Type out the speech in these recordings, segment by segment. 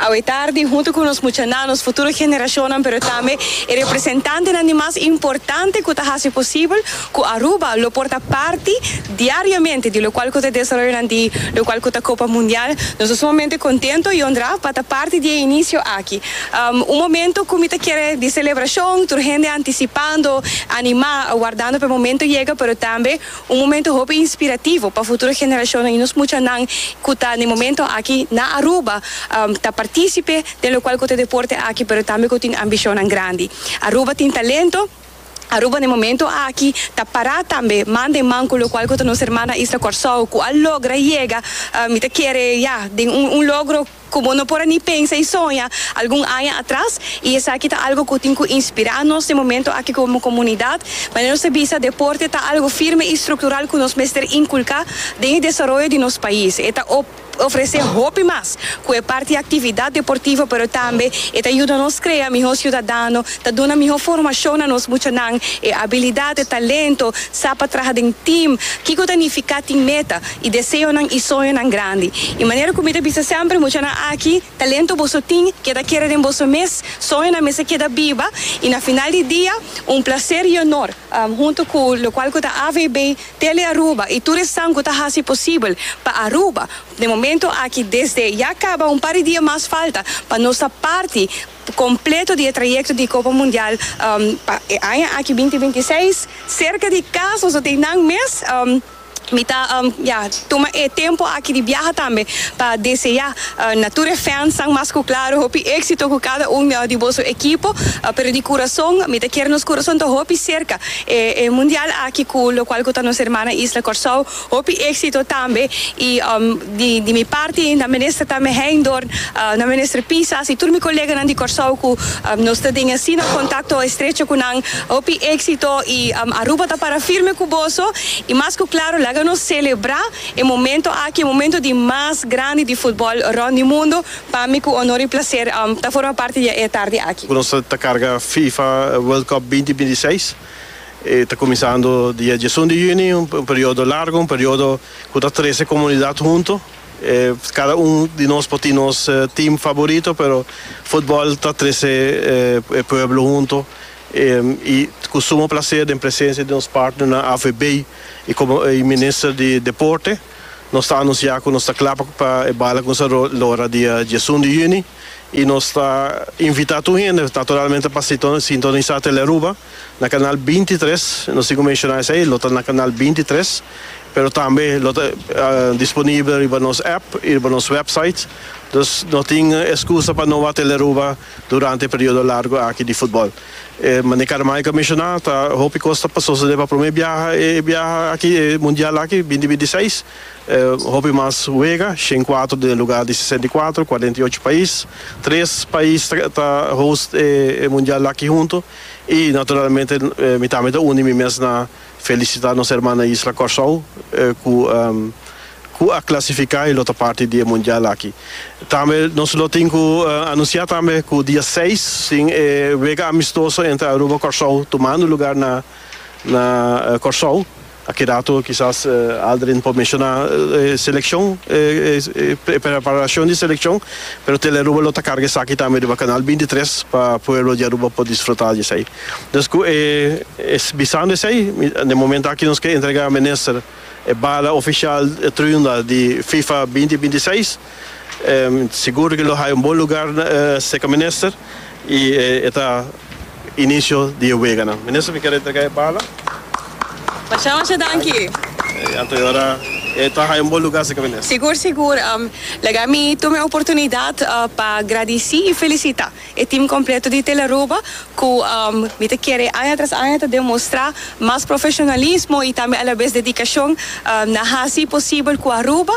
Awe tardi, huntu ku nos muchanan, nos futuro generashonnan pero tambe e representantenan di mas importante ku ta hasi posibel ku Aruba lo por ta parti diariamente di lokual ku ta desaroyonan di lokual ku ta Kopa Mundial. Nos ta sumamente kontento, Yondra, pa ta parti di e inisio aki. Un momento ku mi ta kere di selebrashon, tur hende antisipando, animá, wardando pa e momento yega, pero tambe, Un momento hopi inspirativo pa futuro generashonnan i nos muchanan ku ta den momento aki na Aruba ta partisipe den lokual ku ta e deporte aki pero tambe ku tin ambishonnan grandi. Aruba tin talento, Aruba den momento aki ta pará tambe man den man ku lokual ku ta nos hermana isla Kòrsou ku a logra yega mi ta kere ya den un logro. Ku bo no por a ni pensa i soña algun aña atras, i esaki ta algu ku tin ku inspirá nos den momentu aki komo komunidat. Manera nos a bisa, deporte ta algu firme i struktural ku nos mester inkulká den e desaroyo di nos pais. E ta ofresé hopi mas ku e parti aktividat deportivo, pero tambe e ta yuda nos krea mihó siudadano, ta duna mihó formashon na nos muchanan, e abilidat, e talento, sa pa traha den tim, kiko ta nifiká tin meta, i deseonan i soñonan grandi. I manera ku mi ta bisa semper, muchanan aki, talento boso tin, keda kere den boso mes, soñonan mester keda biba, i na final di dia, un plaser i onor, hunto ku lokual ku ta AVB, Tele Aruba, i tur esnan ku ta hasi posibel pa Aruba, den momento aki, desde ya kaba, un par di dia mas falta, pa nos ta parti kompleto di e trayekto di Kopa Mundial, pa e aña aki binti binti seis, serka di kas, nos lo tin nan mes. Mi ta ya tuma e tempo aki di biaha tambe pa desea na tur e fansnan mas ku klaru hopi éksito ku kada un di boso ekipo. Pero di kurason mi ta kier nos kurason ta hopi serka e mundial aki ku lokual ku ta nos hermana isla Kòrsou. Hopi éksito tambe i di mi parti nan minister tambe Heindorn, nan minister Pisas i tur mi koleganan di Kòrsou ku nos ta den e asina kontakto estrecho ku nan. Hopi éxito y Aruba ta para firme cu boso y mas cu claro laga nos celebra e momento aki e momento di mas grandi di futbol rond di mundo pami cu honor y placer ta forma parti di e tardi aki. Nos ta carga fifa world cup binti binti seis e ta cuminsando dia diesun di juni un periodo largo un periodo cu ta trece comunidad hunto. Cada un di nos por tin nos team favorito pero footbal ta trece e pueblo hunto y cu sumo placer den presencia di nos partnernan AVB y como y minister di deporte nos ta anuncia cu nos ta cla pa e bala cu nos ta lora dia diesun di juni y nos ta invita tur hende naturalmente pa sintonisa Telearuba. na kanal binti tres, nos tin ku menshona esei, lo ta na kanal binti tres, pero tambe lo ta disponibel riba nos app i riba nos wèpsait, dus no tin eskusa pa no wak tele Aruba durante e periodo largu aki di futbòl. Mane Caramayo a menshona, ta hopi kos ta por sosodé pa promé biaha e biaha aki, e mundial aki, binti binti seis, hopi mas wega, shen kuater den e lugar di sesenta i kuater, kuarenta i ocho pais, tres pais ta host e mundial aki huntu. I naturalmente mi tambe ta uni mi mes na felisitá nos herman na isla Kòrsou ku ku a klasifiká i lo ta parti di e mundial aki. Tambe nos lo tin ku anunsiá tambe ku dia seis tin e wega amistoso entre Aruba Kòrsou tumando lugá na na Kòrsou. A keda atu kisas Aldrin por menshoná e selekshon, e preparashon di selekshon, pero Telearuba lo ta karga esaki tambe riba Kanal bintitres pa pueblo di Aruba por disfrutá di esei. Dus ku e bisando esei, den momento aki nos ke entregá Minister e bala ofishal Triunda di fifa binti binti seis. Sigur ke lo haya un bon lugar cerca minister y e ta inicio di e weganan. Minister mi quier entrega e bala. Masha masha danki. Anto ora e ta haya un bon lugar cerca minister. Sigur sigur. Laga mi tuma e oportunidad pa gradici y felicita. E team completo di Telearuba cu mi ta kere aña tras aña ta demostra mas profesionalismo y tambe alabes dedicacion na haci posibel cu Aruba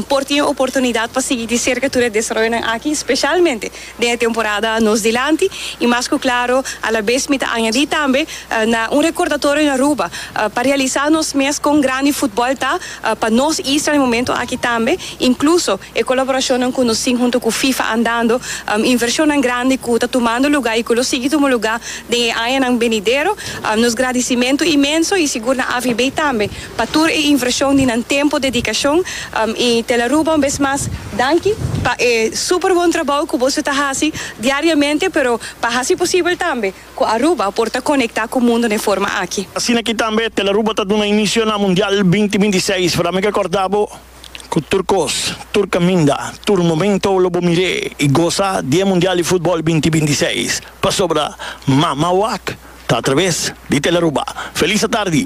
por tin e oportunidad pa sigui di cerca tur e desaroyonan aki specialmente den e temporada nos dilanti y mas cu claro alabes mi ta añadi tambe na un recordatorio na Aruba pa realisa nos mes con grandi footbal ta pa nos isla na e momento aki tambe incluso E colaboracionnan cu nos tin hunto cu FIFA andando, inversionnan grandi cu ta tumando lugar y cu lo sigui tuma lugar den e añanan benidero. Nos gradicimento inmenso y sigur na AVB tambe pa tur e inversion di nan tempo, dedicacion y Tel Aruba un bes mas danki pa e super bon trabao cu boso ta haci diariamente pero pa haci posibel tambe cu Aruba por ta conecta cu mundo n'e forma aki. Asina aki tambe Tel Aruba ta duna inicio na Mundial binti binti seis. Para mi ke corda bo. Cu tur cos, tur caminda, tur momento lo bo mir'é y goza di e Mundial di Futbol binti binti seis, pasobra Mama Wak ta a traves di Telaruba. Feliz atardi!